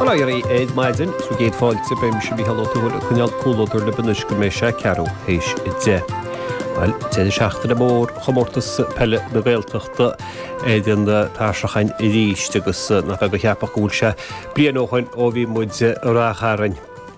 Bail ó Dhia oraibh ar maidin, 's céad fáilte, beidh mise Mícheál Ó Tuathail ag coinneáil comhluadar libh anois go mbeidh sé ceathrú théis a deich. Bhuel, deireadh seachtaine mór Chomórtas Peile na Gaeltachta ar an tairseach againn aríst agus nach beag a cheapfadh go bhfuil sé bliain ó shin ó bhí muid i Rath Chairn.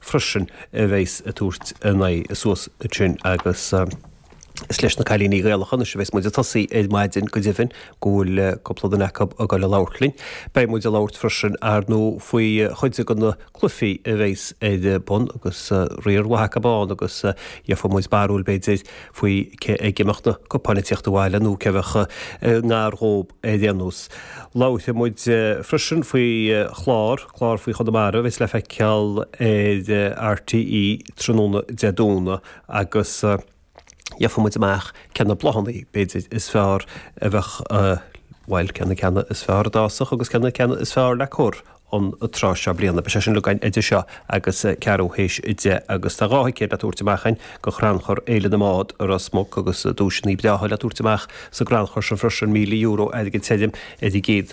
freisin a bheas ag tabhairt a n-aghaidh suas ansin agus is leis na cailíní Gaelacha anois a bheas muid ag tosaí ar maidin, go deimhin, go bhfuil cúpla duine acu ag dul a labhairt linn. Beidh muid ag labhairt freisin, ar ndóigh, faoi chuid de na cluifí a bheas ar bun agus riar maith acu ann agus gheofaidh muid barúil, b'fhéidir, faoi cé aige a mbeidh na cupáin ag tíocht abhaile nó cé a bheadh i ngar dhób ar aon nós. Labharfaidh muid freisin faoi chlár. Clár faoi Chonamara a bheas le feiceáil ar RTÉ tráthnóna Dé Domhnaigh agus gheofaidh muid amach cé na bláthanna, b'fhéidir, is fearr a bheadh, bhuel, cé na ceanna is fearr a d'fhásfadh agus cé na ceanna is fearr le cur an tráth seo bliana. Beidh sé sin uilig againn idir seo agus ceathrú théis a deich agus tá dhá thicéad le tabhairt amach againn do Chrannchur Fhéile na mBád i Ros Muc agus duaiseanna breátha le tabhairt amach sa gcrannchur sin freisin, €1,000 airgid tirim ar an gcéad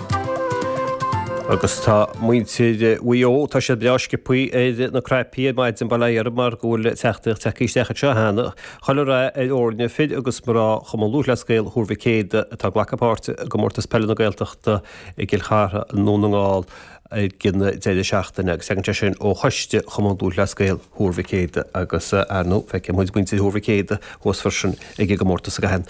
Agus tá muintir Mhaigh Eo, tá siad breá sciopthaí ar na craipí ar maidin, bail ó Dhia orthu, mar go bhfuil téacs tagtha isteach anseo cheana, chuile rath ar fhoirne fir agus mná Chumann Lúthchleas Gael Thuar Mhic Éadaigh atá ag glacadh páirte i gComórtas Peile na Gaeltachta i gCill Chartha i nDún na nGall ag an deireadh seachtaine agus tagann sé sin ó Choiste Chumann Lúthchleas Gael Thuar Mhic Éadaigh agus, ar ndóigh, feicfidh muid muintir Thuar Mhic Éadaigh thuas freisin ag an gcomórtas i gcaitheamh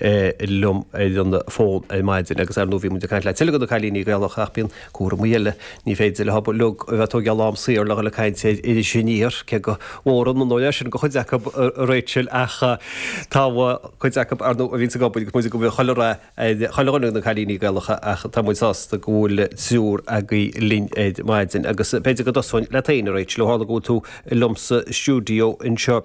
liom ar an bhfón ar maidin agus ar ndóigh bhí muid ag caint le tuilleadh de na cailíní Gaelacha ach bíonn cúramaí eile, ní féidir le hobair leo a bheith ag tógáil am saor le dhul ag caint ar Iris Aniar, cé go bhfóireann an oiread sin de chuid acu, a Rachel ach tá cuid acu ar ndóigh a bhíonns ag obair agus muid ag obair chuile lá ar chuile dhuine de na cailíní Gaelacha ach tá muid sásta go bhfuil triúr agaibh linn ar maidin agus b'fhéidir go dtosóinn leat féin a Rachel ó tharla go bhfuil tú liomsa i stiúideo anseo.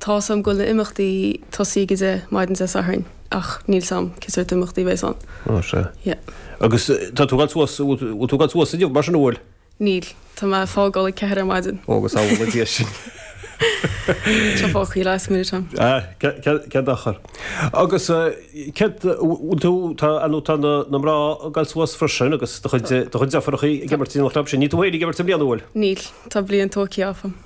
Tá a fhios agam go bhfuil na himeachtaí ag tosaí go dtí maidin Dé Sathairn ach níl a fhios agam cén sórt imeachtaí a bheidh ann. Ó sea. Yeah. Agus tá tú ag gabháil suas, bhfuil tú ag gabháil suas inniu mar sin an bhfuil? Níl. Tá mé ag fágáil ag a ceathair ar maidin. Ó agus amhlaidh dia sin. Seo fág cuí last minute ann. Ah, cad achar. Agus cad, bhfuil tú, tá, a nó tá na na mná ag gabháil suas freisin agus do chuid do chuid deirfiúracha ag imirt don chlub sin, níl tú féin ag imirt i mbliana an bhfuil? Níl. Tá bliain togh aici áfam.